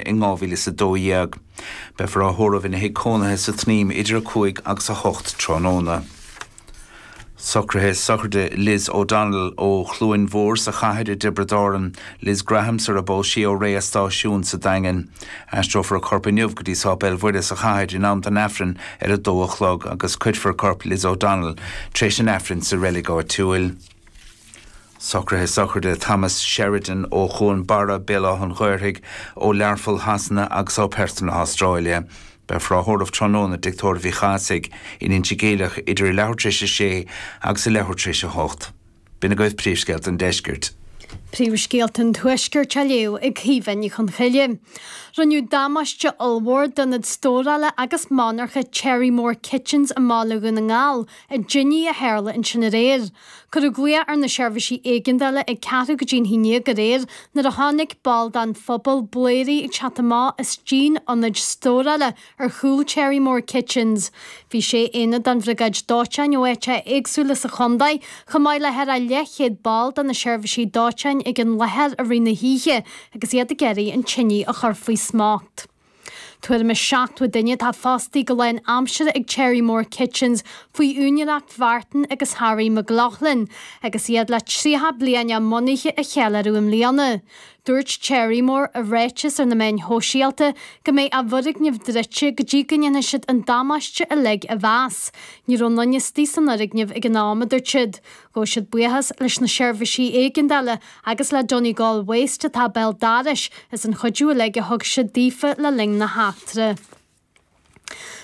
in 2012. Beifear á thórramh ina thigh cónaithe sa tSnaidhm idir 5 agus 8 tráthnóna. Socruithe sochraide Liz O'Donnell ó Chluain Mhór sa Chathair i dTiobraid Árann, Liz Graham sara bpós sí ó Rae an Stáisiúin sa Daingean. Aistreofar a corp inniu go dtí Sáipéal Mhuire sa Chathair in am don Aifreann ar a dó a chlog agus cuirfear corp Liz O'Donnell tréis an Aifrinn sa reilig áitiúil. Socruithe sochraide, Thomas Sheridan ó Chuan Barra, Béal Átha an Ghaorthaidh, ó Learpholl Shasana agus ó Perth na hAstráile. Beifear á thórramh tráthnóna i dtigh tórraimh Uí Chathasaigh in Inse Geimhleach idir a leathuair tar éis a sé agus a leathuair tar éis a hocht. B'in agaibh príomhscéalta an deiscirt. Príomhscéalta an tuaiscirt á léamh ag Caoimhe Ní Chonchoille. Rinneadh damáiste ollmhór d'ionad stórála agus monarcha Cherrymore Kitchens i mBaile Dhún na nGall i dtinidh a tharla ansin aréir. Cuireadh glaoch ar na seirbhísí éigeandála ag ceathrú go dtí an haon déag aréir nuair a chonaic ball den phobal bladhairí ag teacht amach as díon ionaid stórála ar chúl Cherrymore Kitchens. Bhí sé aonad den Bhriogáid Dóiteáin ó áiteacha éagsúla sa chontae, chomh maith le thar a leathchéad ball de na seirbhísí dóiteáin ag an láthair i rith na hoíche agus iad ag iarraidh an tinidh a chur faoi smacht. Tuairim is 70 duine atá fostaí go lánaimseartha ag Cherrymore Kitchens faoi úinéireacht Mhartin agus Harry McLaughlin agus iad le 30 bliain a mbunaithe a cheiliúradh i mbliana. Dúirt Cherrymore i ráiteas ar na meáin shóisialta go mbeidh a bhfoirgneamh druidte go dtí go ndéanfaidh siad an damáiste uilig a mheas. Ní raibh aon duine istigh san fhoirgneamh ag an am, a dúirt siad. Ghabh siad buíochas leis na seirbhísí éigeandála agus le Donegal Waste atá béal dorais as an chuidiú uilig a thug siad daofa le linn na heachtra.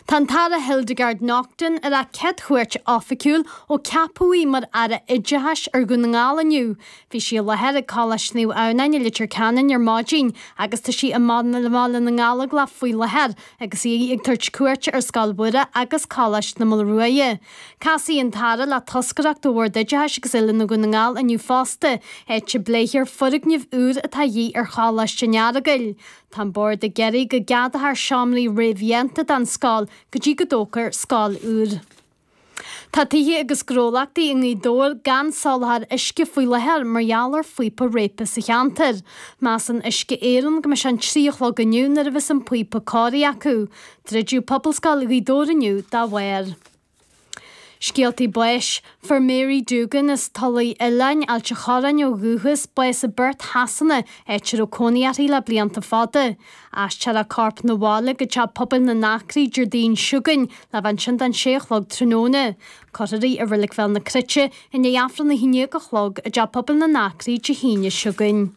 Tá an tAire Hildegarde Naughton ar a céad chuairt oifigiúil ó ceapadh í mar Aire Oideachais ar Dhún na nGall inniu. Bhí sí i láthair ag Coláiste Naomh Adhamhnáin i Leitir Ceanainn ar maidin agus tá sí i mBaile na nGallóglach faoi láthair agus í ag tabhairt cuairte ar Scoil Mhuire agus Coláiste na Maoile Ruaidhe. Casfaidh an tAire le toscaireacht ó Bhord Oideachais agus Oiliúna Dhún na nGall inniu fosta, áit a bpléifear foirgneamh úr atá a dhíth ar Choláiste an Earagail. Tá an Bord ag iarraidh go gceadófar seomraí réamhdhéanta don scoil go dtí go dtógfar scoil úr. Tá tithe agus gnólachtaí i nGaoth Dobhair gan soláthar uisce faoi láthair mar gheall ar phíopa réabtha sa cheantar. Measann Uisce Éireann go mbeidh sé an trí a chlog inniu nuair a bheas an píopa cóirithe acu. Druideadh Pobalscoil Ghaoth Dobhair inniu dá bharr. Scéaltaí Báis, Fuair Mary Doogan as Tulaigh Oileáin, Ailt an Chorráin ó dhúchas, bás i bPerth Shasana, áit a raibh cónaí uirthi le blianta fada. Aistreofar a corp 'na bhaile go teach pobail na nAcraí Déardaoin seo chugainn, le bheith ansin don sé a chlog tráthnóna. Cuirfear í i Reilig Bhéal na Cruite i ndiaidh Aifreann a haon dhéag a chlog i dteach pobail na nAcraí Dé hAoine seo chugainn.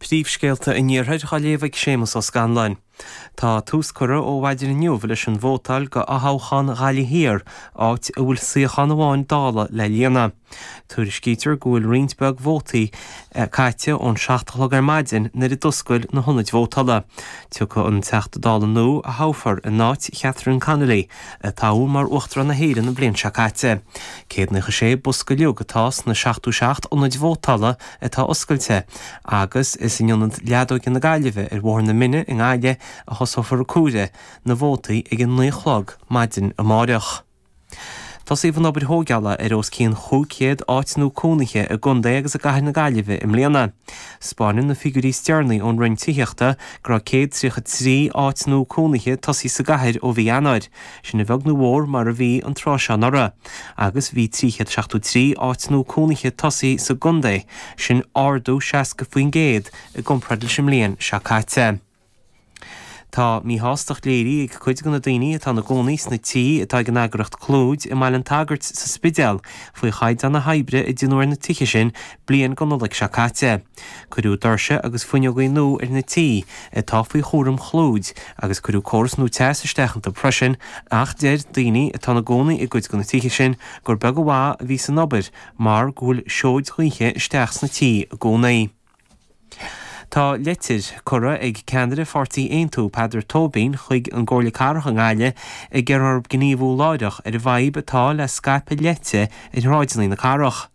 Príomhscéalta an Iarthair á léamh ag Séamus Ó Scanláin. Tá tús curtha ó mhaidin inniu leis an vótáil do fhothoghchán Ghaillimh Thiar áit a bhfuil suíochán amháin Dála le líonadh. Tuairiscítear go bhfuil roinnt beag vótaí caite ón seacht a chlog ar maidin nuair a d'oscail na hionaid vótála. Tiocfaidh an Teachta Dála nua a thoghfar in áit Chatherine Connolly a toghadh mar Uachtarán na hÉireann an bhliain seo caite. Céad naocha sé bosca uilig atá sna seachtó seacht ionad vótála atá oscailte agus is in Ionad Leadóige na Gaillimhe ar Bhóthar na Mine i nGaillimh a thosófar comhaireamh na vótaí ag 9 a chlog maidin amárach. Tosóidh an obair thóigeála ar os cionn 500 áit nua cónaithe i gContae agus i gCathair na Gaillimhe i mbliana. Spáineann na figiúirí is deireanaí ón Roinn Tithíochta go raibh 133 áit nua cónaithe tosaithe sa gcathair ó mhí Eanáir, Sin a bheag nó mhór mar a bhí an tráth seo anuraidh agus bhí 373 áit nua cónaithe tosaithe sa gcontae, sin ardú 60% i gcomparáid leis an mbliain seo caite. Tá míshástacht léirithe ag cuid de na daoine atá ina gcónaí sna tithe atá ag an eagraíocht Clúid i mBaile an tSagairt sa Spidéal faoi chaighdeán na hoibre a deineadh ar na tithe sin bliain go Nollaig seo caite. Cuireadh doirse agus fuinneogaí nua ar na tithe atá faoi chúram Chlúid agus cuireadh córas nua teas isteach iontu freisin ach deir daoine atá ina gcónaí i gcuid de na tithe sin gur beag an mhaith a bhí san obair mar go bhfuil seoid ghaoithe isteach sna tithe i gcónaí. Tá leitir curtha ag ceannaire Pháirtí Aontú, Peadar Tóibín, chuig an gComhairle Cathrach i nGaillimh ag iarraidh orthu gníomhú láithreach ar an bhfadhb atá le scaipeadh leite ar shráideanna na cathrach.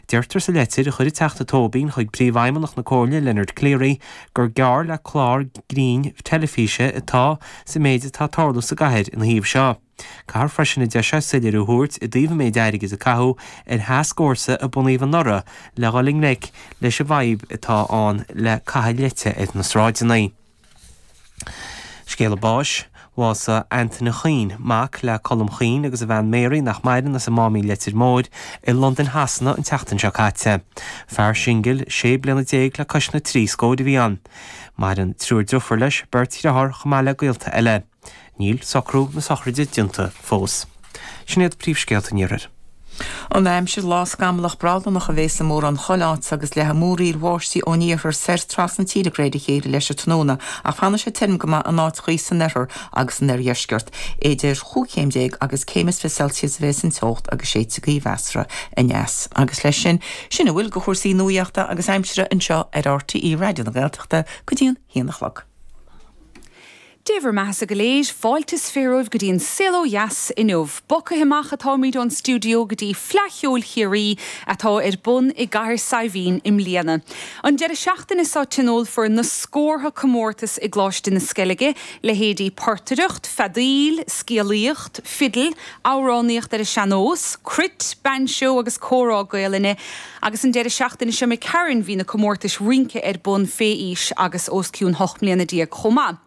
Deirtear sa leitir a chuir an Teachta Tóibín chuig Príomhfheidhmeannach na Comhairle, Leonard Cleary, gur geall le clár grinn teilifíse atá sa méid atá ag tarlú sa gcathair ina thaobh seo. Caithfear freisin, a deir sé, soiléiriú a thabhairt i dtaobh an méid airgid a caitheadh ar thascfhórsa a bunaíodh anuraidh le dhul i ngleic leis an bhfadhb atá ann le caitheamh leite ar na sráideanna. Scéala báis, Bhásaigh Antaine Chaoin, mac le Colm Chaoin agus a bhean Mary, nach maireann, as an Máimín Leitir Móir i Londain Shasana an tseachtain seo caite. Fear singil sé bliana déag le cois na trí scóir a bhí ann. Maireann triúr driofúr leis, beirt dhriotháir chomh maith le gaolta eile. Níl socrú na sochraide déanta fós. Sin iad príomhscéalta an iarthair. An aimsir, Lá scamallach brádánach a bheas i mórán chuile áit agus leathfaidh múraíl bháistí ón iarthar soir trasna tíre de réir a chéile leis an tráthnóna ach fanfaidh sé tirim go maith in áiteachaí san oirthear agus san oirdheisceart. Idir chúig chéim déag agus céim is fiche Celsius a bheas an teocht agus séidfidh gaoth mheasartha aneas. Agus leis sin, sin a bhfuil de chúrsaí nuaíochta agus aimsire anseo ar RTÉ Raidió na Gaeltachta go dtí an haon a chlog. Dé bhur mbeathasa go léir, fáilte is fiche romhaibh go dtí an saol ó dheas inniu. Bogtha amach atáimid ón stiúideo go dtí Fleadh Cheoil Chiarraí atá ar bun i gcathair Saidhbhín i mbliana. An deireadh seachtaine seo tionólfar na scórtha comórtas i gColáiste na Sceilge, leithéidí portaireacht, feadaíl, scéalaíocht, fidil, amhránaíocht ar an sean-nós, cruit, bainseo agus comhrá Gaolainne, Agus an deireadh seachtaine seo d'imigh tharainn bhí na comórtais rince ar bun fé aois agus os cionn hocht mbliana déag chomh maith.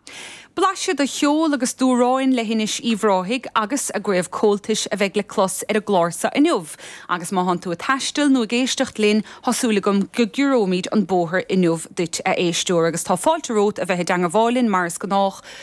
Blaiseadh de cheol agus d'amhráin Leithinis Uíbh Ráthaigh agus a gCraobh Comhaltais a bheidh le clos ar an gclár so inniu agus má thánn tú ag taisteal nó ag éisteacht linn thá súil agam go gciorróimid an bóthar inniu duit a éisteoir agus tá fáilte romhat a bheith i dteangmháil linn mar is gnách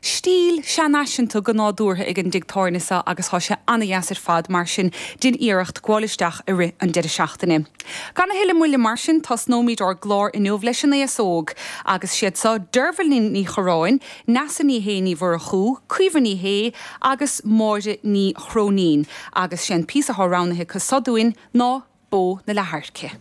Stíl seanfhaiseanta go nádúrtha ag an dtigh tábhairne seo agus tá sé an-deas ar fad mar sin déan iarracht gabháil isteach i rith an deireadh seachtaine. Gan a thuilleadh moille mar sin tosnóimid ár gclár inniu leis an aos óg agus siad seo Deirbhile Ní Chorráin, Neasa Ní Shé Ní Mhurchú, Caoimhe Ní Shé agus Máire Ní Chróinín agus sé an píosa atá roghnaithe acu seo dúinn ná Bó na Leath-Adhairce.